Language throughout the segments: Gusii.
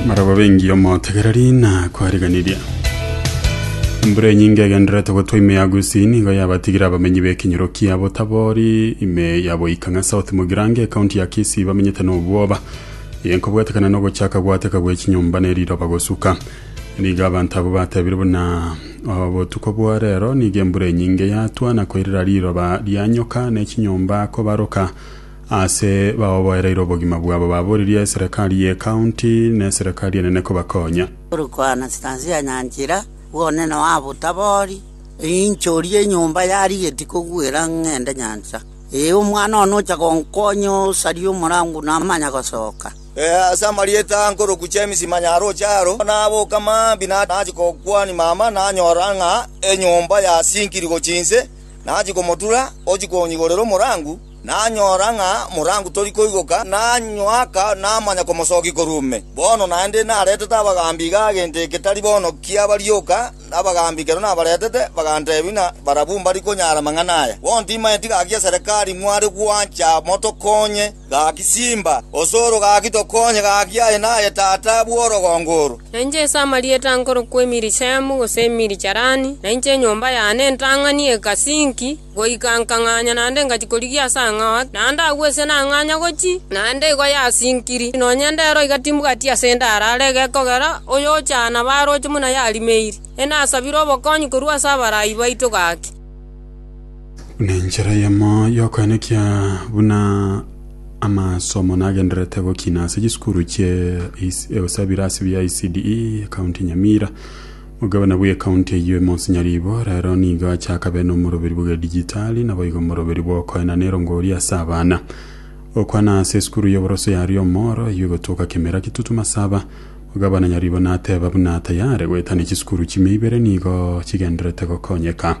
Maraba bengi omotegereri na kwariganirie. Embura enyinge egenderete gotwa ime ya Gusii nigo yabatigire abamenyi b'ekenyoro kia Botabori ime ya Boikang'a South Mugirango ekaunti ya Kisii bamenyete n'obwoba eye nkobwatekana n'ogochaka gwateka gwe chinyomba ne riroba gosuka nigo abanto abo batebire buna obotuko bwa rero nigo embura enyinge yatwa na koirera riroba rianyoka ne chinyomba kobaroka Aase baoboereire obogima bwabo baboririe eserekari y'ecounty na eserekari enene kobakonya. Turkana chitansia nyanchira, bw'onene wabo tabori, Inchoria enyomba yarigeti koguera ng'ende nyancha. Ee, omwana one ocha gonkonya osaria omorangu namanya gosoka. Ee, ase amarieta nkoroku James Manyaroche aro, naboka mambia nachia gokwania mama nanyora ng'a enyomba yasinkiri gochia inse, nachia komotura ochia konyigorera omorangu. Nanyora ng'a morangu tori koigoka, nanyoaka namanya komosokia korwa ime. Bono naende naretete abagaambi iga gento eke tari bono kiaba rioka, na abagaambi ekero nabaretete bagantebia ng'a barabwo mbari konyara amang'ana aya. Bono timaeti gaki ya serekari mware gwancha motokonye, gaki simba, osoro gaki tokonye, gaki aye naye tata bw'orogongo oro. Na inche ase amarieta nkorokwa Emirishemu, gose Emiricharani, na inche enyomba yane entang'ani egasi inki, Goika nkang'anya naende ngachia korigia ase ang'ao ake, na ndagwesia nang'anya gochia, naende igo yasinkiri, nonya ndero iga timbwati ase nde arare egekogera oyochana baroche buna yarimeiri. Enasabire obokonyi korwa ase abarai baito gaki. Buna enchera eyemo y'okoenekia buna amasomo nagendererete gokina ase chisukuru chie ECDE, County Nyamira. Omogabana bw'ecounty eyio e Monsinyaribo rero nigo achakabe nomoroberi bw'egedijitali, naboigo omoroberi bw'okoena ne erongori ase abana. Gokwana ase esukuru y'oboroso ya Riomoro eyio egotoka kemera kitutu masaba, Omogabana Nyaribo nateba buna tayare goetania chisukuru chimia ibere nigo chigendererete gokonyeka.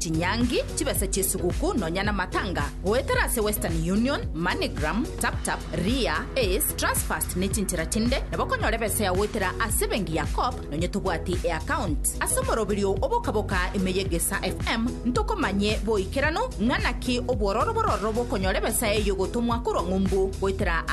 Chinyangi, chibesa chi'esuguku nonya namatanga, goetera ase Western Union, Moneygram, TapTap, Ria, Ace, Transfast ne chinchera chinde nabo okonyora ebesa yao goetera ase ebenki ya Co-op nonya tobwati eaccount. Ase omoroberio oo obokaboka ime y'egesa FM ntokomanye boikeranu ng'a naki obwororo bororo bokonyora ebesa eyio gotomwa korwa ng'umbu goetera